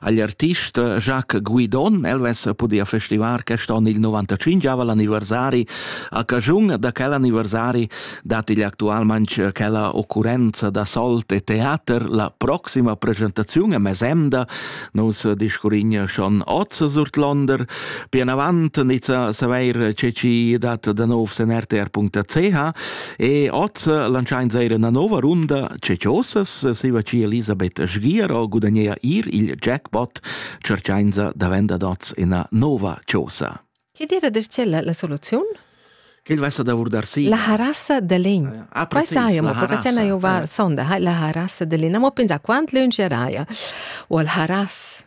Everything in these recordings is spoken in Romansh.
agl artist Jacques Guidon. El vess pudia festivar quest onn il 95 anniversari. A caschun da quel anniversari dat igl actualmente quella occurrenza da solt e teater la proxima presentaziun a Mesemda. Nus discurrin schon oz sur Londer. Pian avant nizza saveir ce ci dat da nov sen rtr.ch E oz lantschains eir üna nouva runda ceciosas, saiva chi Elisabeth Sgiero gudagnea ir il jackpot, tscherchainsa da vender dots üna nova chosa. Chi dira dir c'è la soluziun? Che vessa da vurdar sì. La harassa de legn. Ah, precis, saia, ma perché c'è io va sonda, la harassa de legn. Ma pensa quant lun c'eraia. O al haras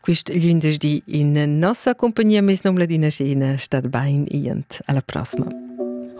Quist glindesdi in nossa compagnia meis nom Ladina Schena stat bain iant alla prossima.